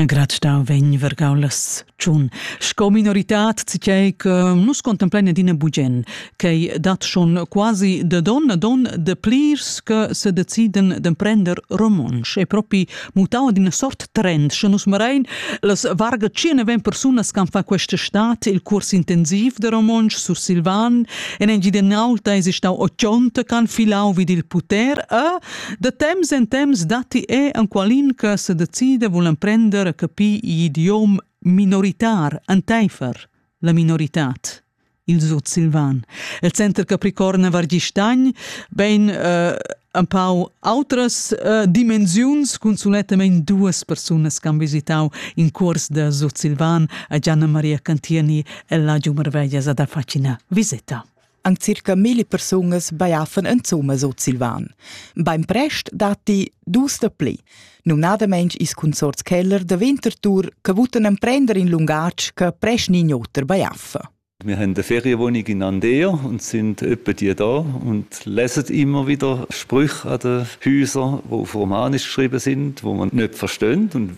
Graz stau vegn vergau las tschun. Sco minoritad citei che nus contemplein adina bugen, ch'ei dat schon quasi de don a don de plirs che se deciden d'emprender romontsch. E propi mutau ad ina sort trend, sche nus marein las varga tschieneven persunas che fa questa stat il curs intensiv de romontsch sursilvan, en engidenau ta esi stau ochonte can filau vid il puter, e Da temps en temps datti er enqualin che se decida vul emprender a capir l'idiom minoritar entaifer la minoritad il sutsilvan. Il center Capricorn a Vargistagn ben uh, un pau outras uh, dimensiuns cun sulettamain duas persunas che han visitau in curs da sutsilvan a Gianna Maria Cantieni e la Giu Marveglia ad Affacina. Visita! Anc circa milli persunas bajaffan insumma sutsilvan. Bainprest datti dus da pli, numnadamain is consorts Keller da Winterthur che votan emprender in lungatg che presch ni oter bajaffa. Wir haben eine Ferienwohnung in Andea und sind etwa die da und lesen immer wieder Sprüche an den Häusern, die auf Romanisch geschrieben sind, die man nicht versteht und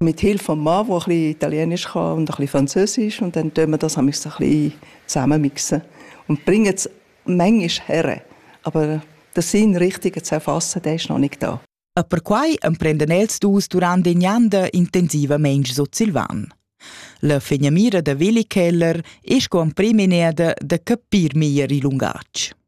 Mit Hilfe vom Mann, der ein bisschen Italienisch kann und ein bisschen Französisch und dann tun wir das ein bisschen zusammenmixen und bringen es manchmal her. Aber der Sinn richtig zu erfassen, der ist noch nicht da. E perquai emprendan els dus durant in anda intensivamein sutsilvan. La fegnamira da Willi Keller è sco emprim in da capir meglier il lungatg.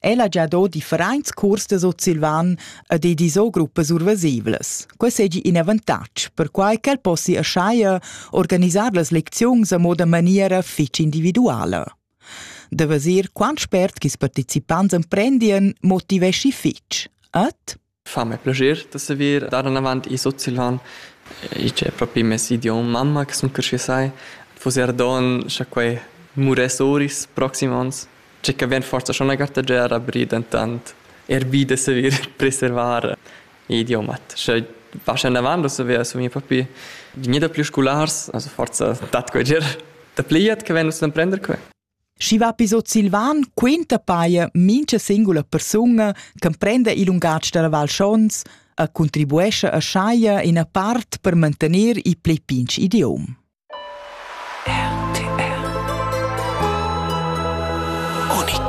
El ha già do differents curs da sutsilvan ed ei disò gruppas urvasivlas. Quei seigi in avantatg, perquai ch'el possi aschaia organisar las lecziuns a moda maniera fetg individuala. Da vesir quant spert ch'is participants emprendien motiveschi fetg. Ed fa me plascher da saver dar anavant il sutsilvan. I c'è propi mes idiom mamma che sun creschü sai. Fus eir don scha quai muress oris proxim ons. Tge che vegn forsa schon la gartagiar abrir dentant er vi da saver preservar idiomat. Sche vas anavant da saver su mi propi gnida più scolars, also forsa dat quai ger da pliat che vegn us l'emprender quai. Schi va episod silvan quinta paia mincha singula persuna ch'emprenda il lungatg da la Val Schons e contribuescha a schaia ina part per mantener il pli pinch idiom. RTR Unik